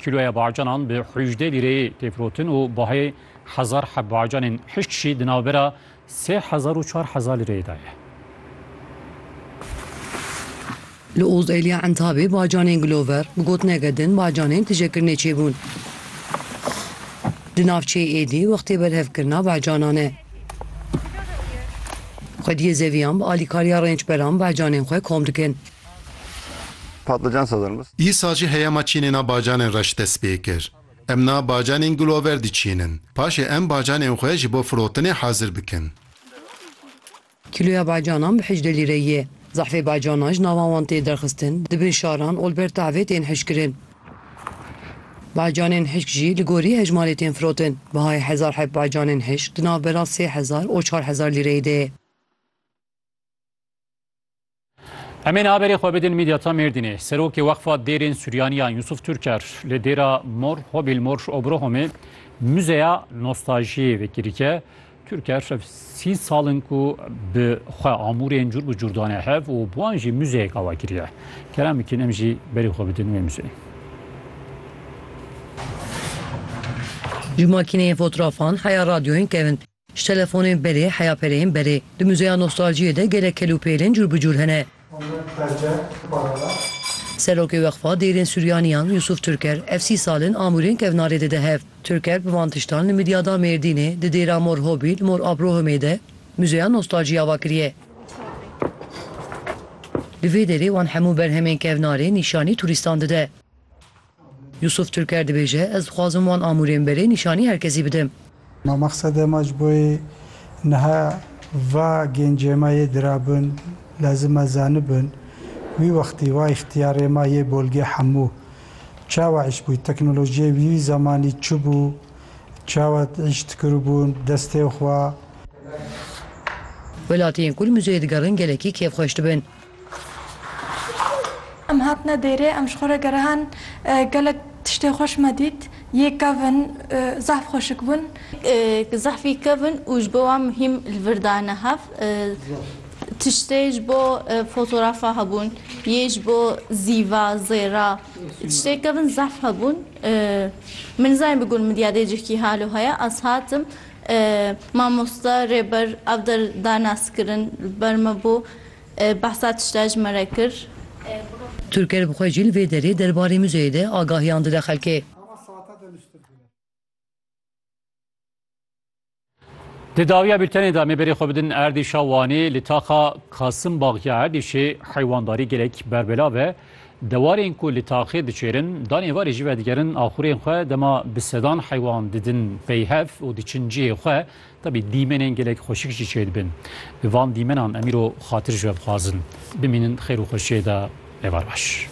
Kîloya bacanan bi hûjdeh lîreyê tê firotin û bahê hezar heb bacanên hişk jî di navbera sê hezar û çar hezar lîreyê de ye. Li Ozeliya Entabê bacanên Glover bi gotineke din bacanên tijekirinê çêbûn. Di navçeyê êdî wextê berhevkirina bacanan e. Xwediyê zeviyan bi alîkariya rêncberan bacanên xwe kom dikin. Îsa jî heyama çînêna bacanên reş dest pê kir. Em na bacanên gulover diçînin. Paşê em bacanên xwe ji bo firotinê hazir bikin. Kîloya bacanan bi hejdeh lîre ye. Zehfê bacanan ji navan wan tê derxistin, di bin şaran û li ber tavê tên hişkirin. Bacanên hişk jî li gorî hejmarê tên firotin. Bihayê hezar heb bacanên hişk di navbera sê hezar û çar hezar lîreyê de ye. Emên haberê xwe bidin Medyata Mêrdînê. Serokê Wexfa Dêrên Suryaniyan Yusuf Türker li dêra Mor Hobil Mor Obrohomê muzeya nostajiyê vekirike. Türker ev sî salin ku bi xwe amûrên cur bi cur dane hev û bi wan jî muzeyek awa kiriye. Kerem bikin em jî berê xwe bidin wê muzeyê. Ji makîneyên fotrafan heya radyoyên kevin. Ji telefonên berê heya pereyên berê. Di muzeya nostaljiyê de gelek kel û pêlên cûr bi cûr hene. Serokê Weqfa Dêrên Suryaniyan Yusuf Türker ev sî sal in amûrên kevnarê dide hev. Türker bi van tiştan li Midyada Mêrdînê, di Dêra Mor Hobî li Mor Abrohimê de muzeya nostaljiyê ava kiriye. Di vê derê wan hemû berhemên kevnarê nîşanî turîstan dide. Yusuf Türker dibêje, Ez dixwazim wan amûrên berê nîşanî her kesî bidim. Ma mexsede ma ji bo yê niha va gêncê ma yê dirabin lezim e zanibin wî wextî va îxtîyarê ma yê bolgê hemû çawa îş bûy, teknolojiyê wî zemanî çi bû, çawa îş dikiribûn destê xwe. Welatiyên ku li muzeyê digerin gelekî kêfxweş dibin. Em hatine dêrê, em ji xwe re gerihan, gelek tiştên xweş me dît, yê kevin, zehf xweşik bûn. Zehfî kevin û ji bo wan muhîm li vir dayne hev. Tiştê ji bo fotorafa hebûn, yê ji bo zîva, zêra, tiştê kevin zehf hebûn. Min nizanî bigul min diyadê cihkî halo heye, ez hatim, mamoste, rêber ev der dane ez kirin li ber me bû. Behsa tişta ji me re kir. Turker bi xwe jî li vê derê derbarê muzeyê de agahiyan dide xelkê. Di dawiya bûltenê de em ê berê xwe bidin erdîşa Wanê. Li taxa Kasimbag ya erdîşê heywandarî gelek berbelav e. Dewarên ku li taxê diçêrin, danê varê jî vedigerin axurên xwe dema bi sedan heywan didin peyhev û diçin cihê xwe. Tevî dîmenên gelek xweşik jî çêdibin. Bi van dîmenan em îro xatir ji we bixwazin. Bimînin xêr û xweşiyê de. Êvar baş.